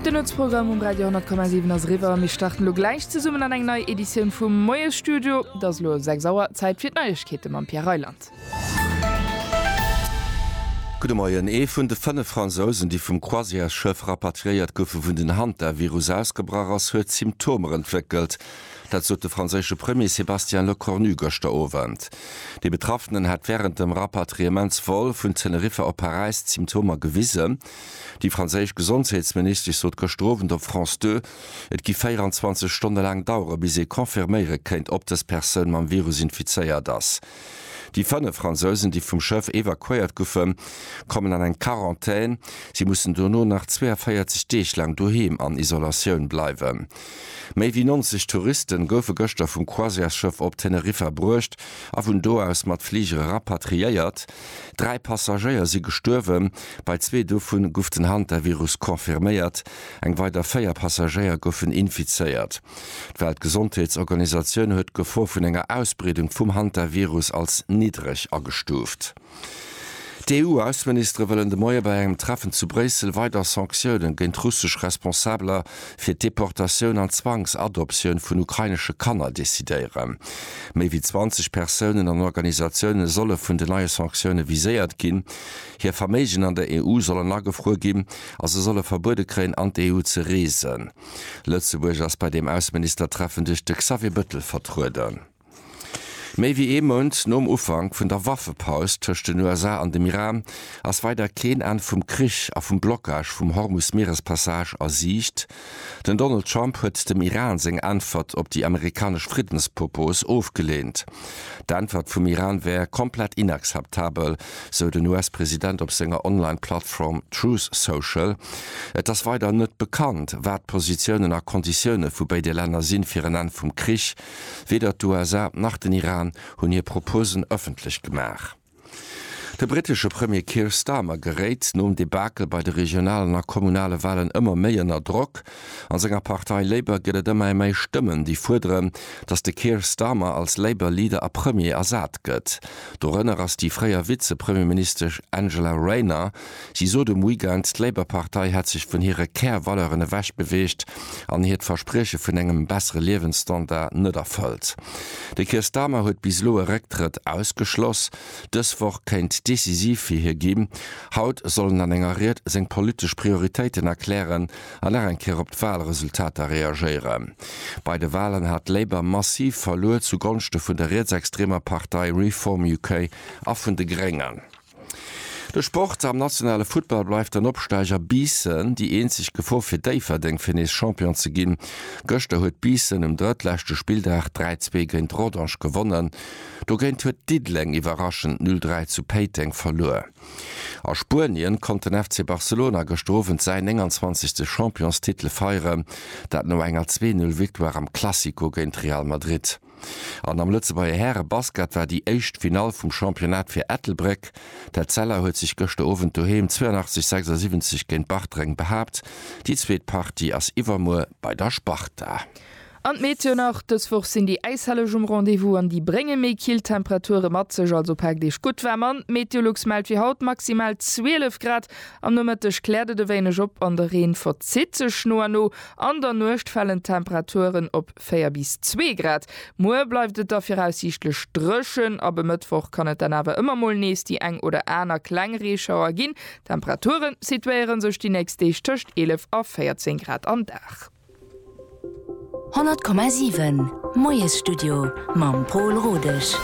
De Nuetsprogramm um Radio 10,7 ass eriwwer. Mir starten elo gläich zesummen an eng nei Editioun vum Moiesstudio. Et ass elo 6 Auer, Zäit fir d'Neiegkeete mam Pierre Reyland. Gudde Moien. Ee vun de fënnef Fransousen, déi vum Croisièresschëff rapatriéiert goufen, wou den Hantavirus ausgebrach ass, huet Symptomer entwéckelt. Dat sot de franséische Premier Sébastien Lecornu gëschter Owend. Dee Betraffenen hätt wärend dem Rapatriements-Vol vun Teneriffa op Paräis d'Symptomer gewisen. Déi franséisch Gesondheetsministesch sot gëschter Owend op France Deux, et giff 24 Stonne laang dauere bis ee confirméiere kéint, ob dës Persoun mam Virus infizéiert ass. Déi 5 Fransousen, déi vum Schëff evakuéiert guffe, kommen an eng Quarantän. Si mussen dono nach 42 Deeg laang doheem an Isolatioun bleiwen. Méi wéi 90 Touriste goufe gëschter vum Croisièresschëff op Teneriffa bruecht a vun do aus mat Fligere rapatriéiert. Dräi Passagéier si gestuerwen, bei zwee dovu guff den Hantavirus confirméiert, eng weider véier Passagéier goufen infizéiert. D'Weltgesondheetsorganisatioun huet d'Gefor vun enger Ausbreedung vum Hantavirus als niddreg agestuuft. D'EU-Ausseministere wëllen de Moie bei engem Treffen zu Bréissel weider Sanktiounen géint russesch Responsabeler fir d'Deportatioun an Zwangsadoptioun vun ukrainesche Kanner decidéieren. Méi wéi 20 Persounen an Organisatioune solle vun de neie Sanktioune viséiert ginn. Hir Verméigen an der EU sollen agefruer ginn a se solle verbuede kréien, an d'EU ze reesen. Lëtzebuerg ass bei deem Ausseministertreffen duerch de Xavier Bëttel vertrueden. Méi wéi ee Mount nom Ufank vun der Waffepaus tëscht den USA an dem Iran ass weider keen Enn vum Krich a vum Blockage vum Hormus-Mierespassage a Siicht. Den Donald Trump huet dem Iran seng Äntwert op déi amerikanesch Friddenspropos ofgeleent. D'Äntwert vum Iran wär komplett inakzeptabel, sou den US-President op senger Online-Plattform Truth Social. Et ass weider net bekannt, wat d'Positiounen a Konditioune vu béide Länner sinn, fir en Enn vum Krich Weder d'USA nach den Iran hunn hir Proposen ëffentlech gemaach. De brittesche Premier Keir Starmer geréit nom Debakel bei de regionalen a kommunale Walen ëmmer méi ënner Drock. An senger Partei Labour gëtt et ëmmer méi Stëmmen, déi fuerderen, datt de Keir Starmer als Labour Leader a Premier ersat gëtt. Dorënner ass déi fréier Vize-Premierministesch Angela Rayner. Si sot um Weekend, d'Labour-Partei hätt sech vun hire Kärvaleuren ewech beweegt an hiert Versprieche vun engem bessere Liewensstandard net erfëllt. De Keir Starmer huet bis elo e Récktrëtt ausgeschloss. Dës Woch kéint decisiv fir hie ginn. Haut soll en an enger Ried seng politesch Prioritéiten erklären an nach eng Kéier op d'Walresultater reagéieren. Bei de Walen hat Labour massiv verluer, zu Gonschte vun der rietsextremer Partei Reform UK a vun de Gréngen. De Sport am nationale Futtball bleift den Opsteiger Biissen déi eenzeg Gefor fir Déifferdeng fir nees Champion ze ginn. Gëschter huet Biissen um drëttleschte Spilldag 3, 2 géint Rodange gewonnen. Dogéint huet Diddeleng iwwerraschend 0, 3 zu Péiteng verluer. A Spuenien konnt den FC Barcelona gëschter Owend säin 29. Championstitel feieren, dat no enger 2, 0 Victoire am Classico géint Real Madrid. An am Lëtzebuerger Härebasket war déi éischt Finall vum Championnat fir Ettelbréck. D'Etzella huet sech gëschter Owend doheem 82, 76 géint Bartreng behaapt. Déi zweet Partie ass iwwermuer bei der Sparta. An d'Meteo nach, Dës Woch sinn déi Äishelleg um Rendez-vous an déi brénge méi kill Temperature mat sech. Also paakt Iech gutt waarm an. D'Meteolux mellt fir haut maximal 12 Grad. Am Nomëtteg kläert et e wéineg op an de Reen verzitt sech no a no. An der Nuecht falen d'Temperaturen op 4 bis 2 Grad. Muer bleift et da viraussiichtlech dréchen, ab e Mëttwoch kann et dann awer ëmmer mol nees déi eng oder aner kleng Reeschauer ginn. D'Temperature situéiere sech déi nächst Deeg tëscht 11 a 14 Grad am Dag. 100,7 Moiesstudio mam Pol Rodesch.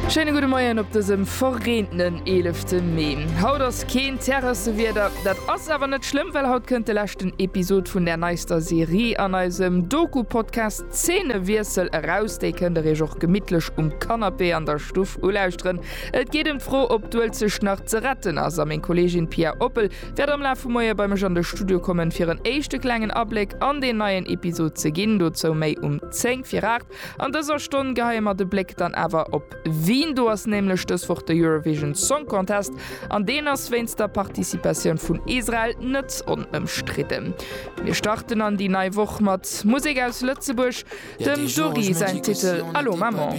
Schéine gudde Moien op dësem verreentenen 11 Mee. Haut ass. Keen Terrassewieder, dat ass awer net schlëmm, well haut kënnt de leschten Episod vun där neister Serie an eisem Doku-Podcast Zeenewiessel eraus. Déi kënnt der iech och gemittlech um Kannapee an der Stuff ulauschteren. Et geet ëm d'Fro, ob d'Uelzecht nach ze retten ass a meng Kolleegin Pia Oppel wäert am Laf vum Moie bei mech an de Studio kommen, fir en éischte klengen Abléck an deen neien Episod ze ginn. Dozou méi um 10 vir 8. An dëser Stonn geheie mer de Bléck dann awer op Wien. Do ass nämlech dës Woch de Eurovision Song Contest an deen ass wéinst der Participatioun vun Israel net onëmstridden. Mir starten an déi nei Woch mat Musek aus Lëtzebuerg. Dem Jory säin Titel Allô Maman.